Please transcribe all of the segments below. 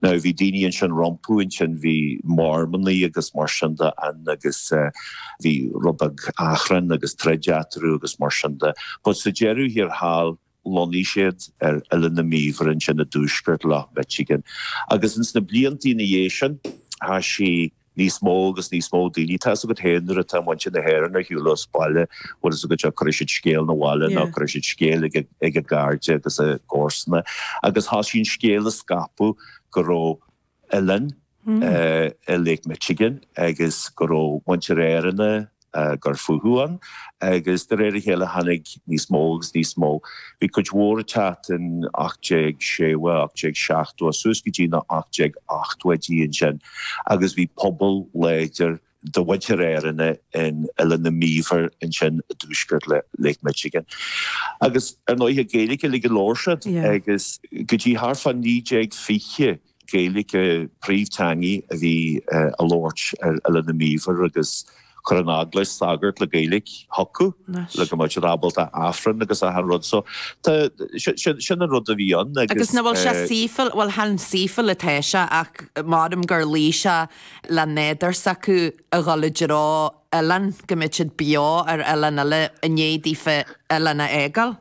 Now bhí daoine ansin rompu ansin, bhí Mormannaigh agus mar sin de ann agus bhí rud beag achrainn agus troid eatarthu agus mar sin de but sa deireadh thiar thall lonnaigh siad ar Oileán na mBíobhar ansin i dtuaisceart Loch Michigan agus ins na blianta ina dhiaidh sin tá siad Níos mó agus níos mó daoine, tá fhios agat fhéin nuair atá muintir na hÉireann ar shiúl as baile, bhfuil fhios agat seo, cuirfidh siad scéal 'na bhaile nó cuirfidh siad scéal ag a gcairde agus a gcomharsana agus thoisigh an scéal a scaipeadh go raibh oileán i Lake Michigan agus go raibh muintir Éireannach ag cur fúthu ann, agus de réir a chéile tháinig níos mó agus níos mó. Bhí cuid mhór ag teacht in 1860, 1870 suas go dtí na 1880idí ansin agus bhí pobal láidir de mhuintir Éireannach in Oileán na mBíobhar ansin i dtuaisceart Lake Michigan. Agus ar ndóighe Gaeilge uilig a labhair siad agus go dtí thart fá 1920, Gaeilge a príomhtheangaidh a bhí á labhairt ar Oileán na mBíobhar agus chuir an Eaglais sagairt le Gaeilge chucu le go mbeadh siad ábalta Aifreann agus achan rud so tá, sin an rud a bhí ann agus. Nach bhfuil sé saoithiúil, bhuel chan saoithiúil atá sé ach measaim gur luigh sé leis an nádúr s'acu a dhul i dtreo oileán go mbeadh siad beo ar oileán eile i ndiaidh daofa oileán a fhágáil.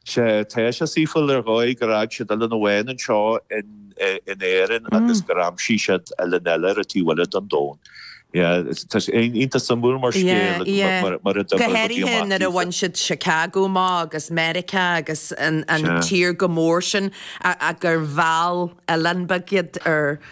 Sea, tá sé saoithiúil ar dhóigh gur fhág siad oileán amháin anseo in Éirinn agus gur aimsigh siad oileán eile ar an taobh eile den domhan. Tá sé iontach suimiúil mar scéal agus mar a d'oibrigh na rudaí amach. Go háirithe nuair a bhain siad Chicago amach agus Meiriceá agus an tír chomh mór sin ach gur mheall oileán beag iad ar.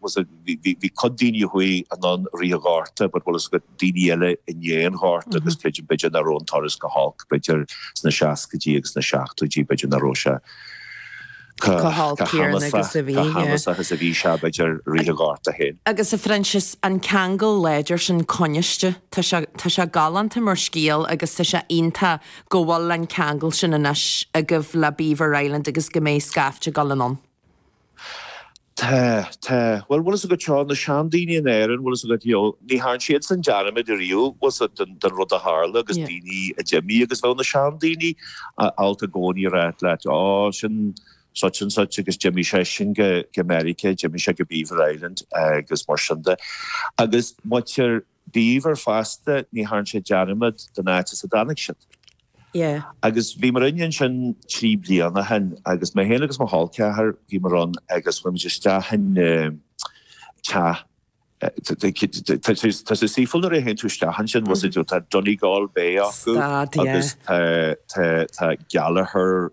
Bhfuil 's a'd, bhí cuid daoine a chuaigh anonn i rith an Ghorta but bhfuil 's a'd daoine eile i ndiaidh an Ghorta agus creidim b'fhéidir nach raibh an turas chomh holc b'fhéidir sna seascaidí agus sna seachtóidí b'fhéidir nach raibh sé chomh huafásach is a bhí sé b'fhéidir i rith an Ghorta fhéin. Agus a Phroinsias, an ceangal láidir sin coinniste, tá sé, tá sé galánta mar scéal agus tá sé iontach go bhfuil an ceangal sin anois agaibh le Beaver Island agus go mbeidh scaifte ag dul anonn. Tá, tá. Bhuel, bhfuil fhios agat seo, na seandaoine in Éirinn, bhfuil fhios agat, you know, ní thearn siadsan dearmad ariamh, bhfuil fhios agat, den, den rud a tharla agus daoine a d'imigh agus bheadh na seandaoine abhus i gcónaí a' rá leat, Ó, sin such and such agus d'imigh seisean go, go Meiriceá, d'imigh sé go Beaver Island agus mar sin de. Agus muintir. Beaver fosta, ní thearn siad dearmad den áit as a dtáinig siad. Yeah. Agus bhí muidinne ansin trí bliana ó shin agus mé fhéin agus mo chol ceathrair, bhí muid ann agus chuaigh muid isteach in teach, tá sé saoithiúil nuair a théann tú isteach ansin, tá Donegal Bay acu agus tá Gallagher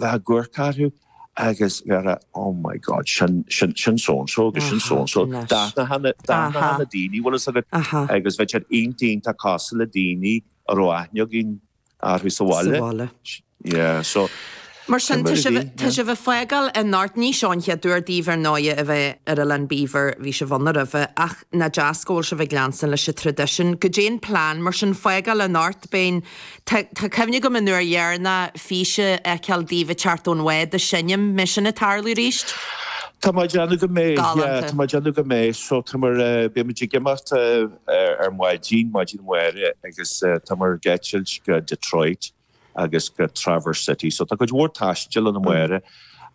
bheith ag cur orthu agus bheith a' oh my God sin sin sin so and so agus sin so and so. D'aithneofá na d'aithneofá na daoine bhfuil fhios agat agus bhí sé iontach deas casadh le daoine a raibh aithne againn orthu sa bhaile. Yeah so Mar sin tá sibh tá sibh a' fágáil anocht ní seo an chéad uair daoibh ar ndóigh a bheith ar Oileán Beaver bhí sibh ann roimhe ach nach deas go bhfuil sibh ag leanstan leis an traidisiún goidé an plean mar sin fágáil i n-áit beinn Tá cuimhne agam an uair dheireanach físeán a fheiceáil daoibh ag teacht ón bhád an mbeidh sin ag tarlú arís. Tá mé ag déanamh go mbeidh, yeah, tá mé ag déanamh go mbeidh. So tá muid, beimid ag imeacht ar maidin, maidin amárach agus tá muid ag eitilt go Detroit agus go Traverse City. So tá cuid mhór taistil ann amárach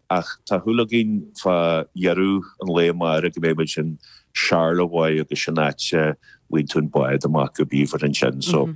ach tá súil againn fá dheireadh an lae amárach go mbeidh muid in Charlevoix agus sin áit a bhfaigheann tú an bád amach go Beaver ansin. So.